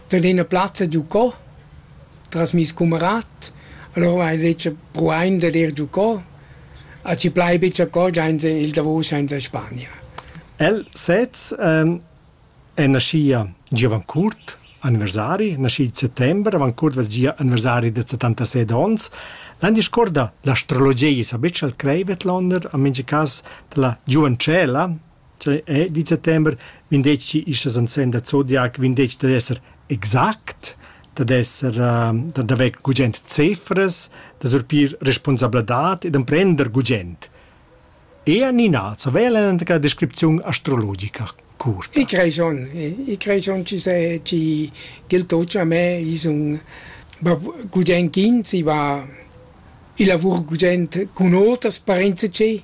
dad ina plazza giucò tras meis cumarat. Allura m'ha detg pruain dad ir giucò. A chi plai be giacò sainza il davos sainza Spania. El sez ehm è naschia giovane curt, anniversari, naschi il settember, avant curt vess gia anniversari da settantaseit ons. L'han discorda l'astrologia, sa betg al creivet l'onder, a mincha cas della giuventschella, Cioè è di settember vendetgi istas ansen da zodiac vendetgi dad esser exact, dad esser ehm dad haver gugent cefras, da surpir responsabladad e d'emprender gugent. Ea Nina, co vala enta descripziun astrologica curta? I crei schon, i crei schon chi se chi ch'el toccia a me, i sun va gugent ch'ins, i va i lavur gugent cun oters, parenza che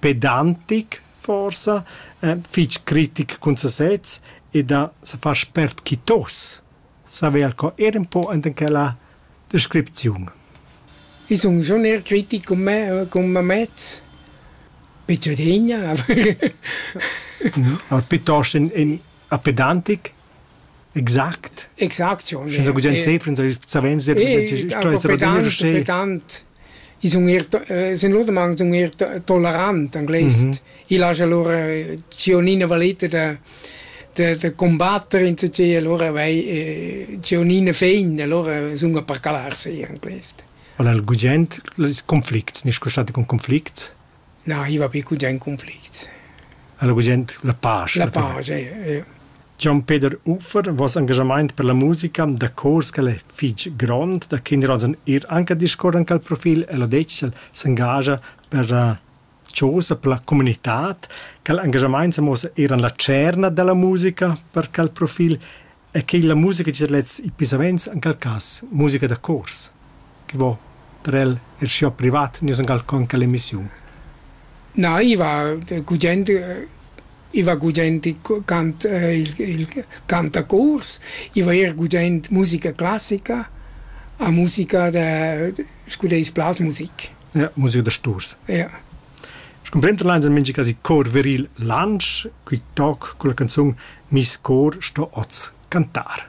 pedantic forsa, eh, fich critic cun sesez e da se far spert quitos, saver co ir un po ant in quella descripziun. I sun schon eir critic cum me, cum mamez, picciodegna, aber... no, piuttosto in, in a pedantic Exact. Exact schon. Scha gugent sempre savens sto esser adonir sche petant i sun eir sun lodamang sun eir tolerant anglais. Il haja lura Giannina valeta da da da combatter insatgè alura vai Giannina fein alura sun a parcalar si anglais. Al gugent conflicts, nisch custati cun conflicts? na arriva pli gugent conflict. Alla gugent la pace. La pace, ja. Gian Peter Uffer vos engagement per la musica da cors che è fitg grond, da kinderrosen ir anche discorren al profil e lo decel s'engagia per uh, cosa per la comunità, che l'engagement sa mossa eran la cerna della musica per quel profil e che la musica da lets e pisaments en quel cas musica da chors che vo per el er schiu privat nus en con quella emissiun. Na, iva gugent iva gugent cant il, il cantacors, iva er gugent musica classica a musica da scu deis blasmusik. Ja, musica da sturs. Ja. Scumprenda leins en mintga casi cor viril Lantsch, qui toc culla canzun Mis cor sto oz cantar.